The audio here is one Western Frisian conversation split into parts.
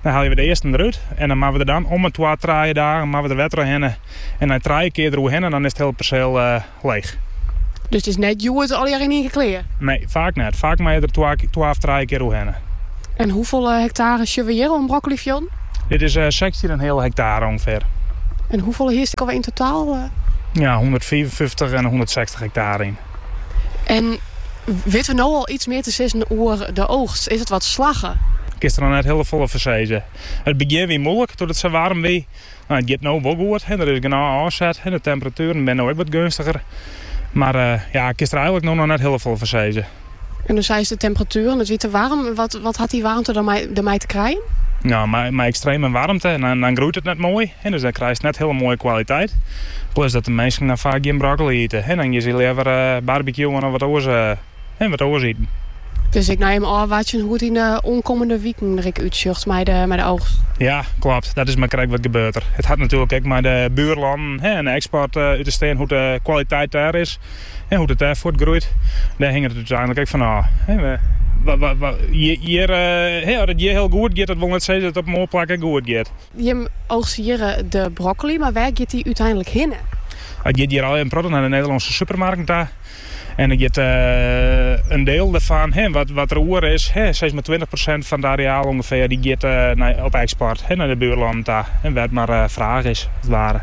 Dan helje we de earsten derút en dan moatte we der dan om 'e twa trije dagen moatte we der wer trochhinne. En nei trije kear deroerhinne, dan is it hiele perseel leech. Dus it is net hjoed allegear yn ien kear? Nee, faak net. Faak moatte we der twa of trije kear oerhinne. En hoefolle hektare sjogge we hjir oan broccolifjilden? Dit is sechstjin en in heal hektare ûngefear. En hoefolle hiest ek alweer yn totaal? Ja, hûndertfiifenfyftich en hûndertsechstich hektare yn. En witte we no al iets mear te sizzen oer de oogst? Is it wat slagge? Kinst der noch net hiel folle foar sizze. It begjin wie moeilik doe't it sa waarm wie. It giet no wol goed, der is genôch ôfset en de temperatueren binne no ek wat gunstiger. Mar ja, kinst der eigenlik no noch net hiel folle foar sizze. En no seiest de temperatueren, it wie te waarm. Wat hat dy waarmte dermei te krijen? Mei ekstreme waarmte, dan groeit it net moai. Hinne dan krijst net hiele moaie kwaliteit. Plus dat de minsken dan faak gjin broccoli ite en dan geane se leaver barbecuen of wat oars iten. Dus ek noch even ôfwachtsjen hoe't it de oankommende wiken der ek útsjocht mei de oogst. Ja, klopt. Dat is mar krekt wat gebeurt der. It hat natuerlik ek mei de buerlannen en de eksport út te stean hoe't de kwaliteit dêr is en hoe't it dêr fuortgroeit. Dêr hinget it úteinlik ek fan ôf. As it hjir hiel goed giet, dat wol net sizze dat it op in oar plak ek goed giet. Jim oogstje hjir de brokkoli, mar wêr giet dy úteinlik hinne? Hy giet hjir ôf in protte nei de Nederlânske supermarkten ta. En der giet in deel derfan, wat der oer is, sis mar tweintich persint fan it areaal ûngefear, dy giet op eksport nei de buerlannen ta, wêr't mar fraach is, as it ware.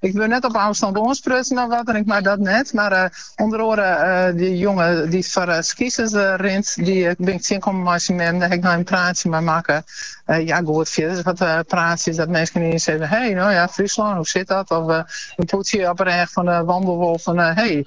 Ik wurd net op ôfstân oansprutsen of wat en ik mei dat net. Mar eh, ûnder oare eh, dy jonge dy't foar eh, schisis eh, rint, dy eh, bin ik tsjinkommen mei syn mem. Dêr ha ik noch in praatsje mei makke. Eh, ja, goed, fierders wat eh, praatsjes dat minsken ineens sizze... hé, hey, nou ja, Friesland, hoe zit dat? Of eh, in poatsje op 'e rêch fan de wandelwolf fan... hé, hey,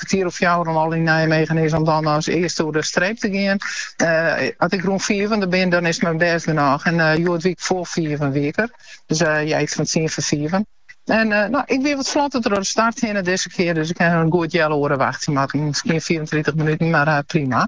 kertier oer fjouweren al yn Nijmegen is om dan as earste oer de streep te gean. As ik rûn fiven der bin, dan is it my bêst genôch. En hjoed wie ik foar fiven wie ik der. Dus ja, iets fan tsien foar fiven. En uh, nou, ik wie wat flotter troch de start hinne dizze kear. Dus ik ha in goed heal oere wachtsje moatten. Miskien 34 minuten, mar uh, prima.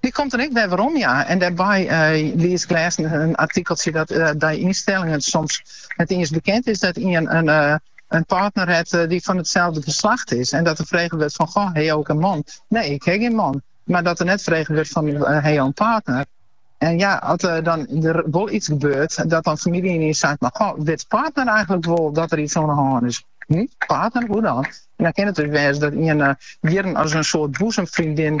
Dy komt der ek wer werom, ja. En dêrby lies ik lêst in artikeltsje dat by ynstellingen soms net iens bekend is dat ien in in partner hat dy't fan itselde geslacht is. En dat der frege wurdt fan, goh, ha je ek in man? Nee, ik ha gjin man. Mar dat der net frege wurdt fan, ha je in partner? En ja, as der dan der wol iets gebeurt, dat dan famylje ynienen seit, mar goh, wit partner eigenlik wol dat der iets oan 'e hân is? Hm? Partner, hoe dan? En dan kin it dus wêze dat ien eh, jierren as in soart boezemvriendin